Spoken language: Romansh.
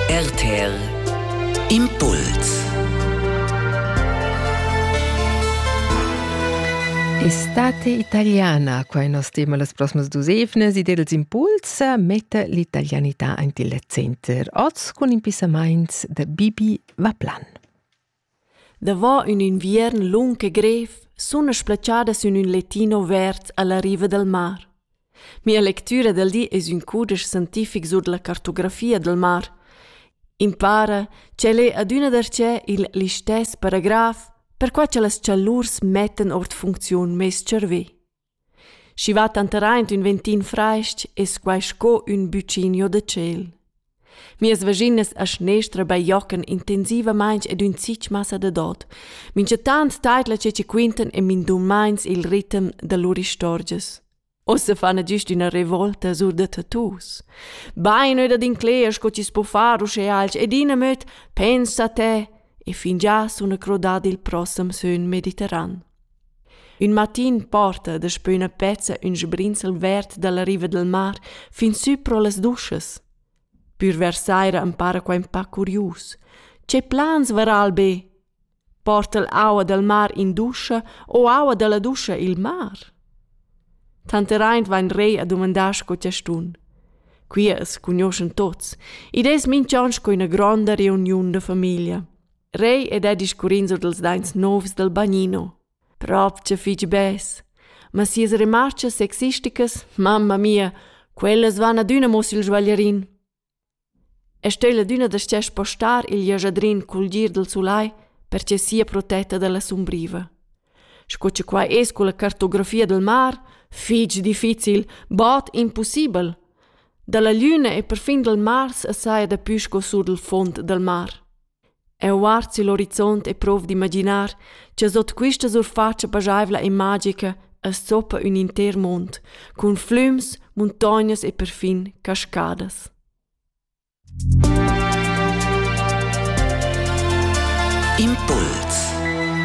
RTL Impuls Estate italiana, quai nos tema las prosmas dus evnes, id els impuls metta l'italianità ant il center. Oz cun impissamaints da Bibi Vaplan. Davò ün inviern lung e grev suna splatschadas ün ün lettin overt alla riva dal mar. Mia lectüra dal di es ün cudesch scientific sur la cartografia dal mar. Impara ch'el è adüna darcheu il listess paragraf, perquai cha las chalurs mettan our d'funcziun meis tscharvè. Schi va tanteraint ün ventin fraist es quai sco ün buccinio da tschel. Mias vaginas a schnestra bajocan intensivamaing ed ün zich massa da dod. Minchataunt taidla che chi quintan e mindummains il ritem da lur istorgias. Ossa fana güst üna revolta sur da tattoos. Bain öda d'incler sco chi's po far usche alch ed in amöd pensa te e fingià suna crodà il prossem sön mediterran. Ün matin porta daspö üna pezza ün sbrinzel verd da la riva dal mar fin sü pro las duschas. Pür vers saira am para quai ün pa curius. Che plans vara'l be? Porta'l aua dal mar in duscha o aua da la duscha i'l mar? Tanteraint vain Rei a dumandar sco chastun. Qui as cugnuoschan tuots, id es minch'on sco üna gronda reuniun da famiglia. Rei ed ha discurrin sur dals daints novs dal bagnino. Propcha fich bes. Ma sias remarchas sexisticas, mamma mia, quellas van adüna mo sül svaglierin. E stel adüna da stia spostar il jajadrin cul gir dal sulai perche sia protetta dalla sumbriva. Sco che qua es con la cartografia del mar, fich difficil, bod impossibel. Dalla lüna e perfin dal Mars assai da pü sco sur del fond dal mar. Eu guard sül orizont e prov d'imaginar cha sot quista surfatscha paschaivla e magica as zoppa ün inter mond cun flüms, muntognas e perfin cascadas. Impuls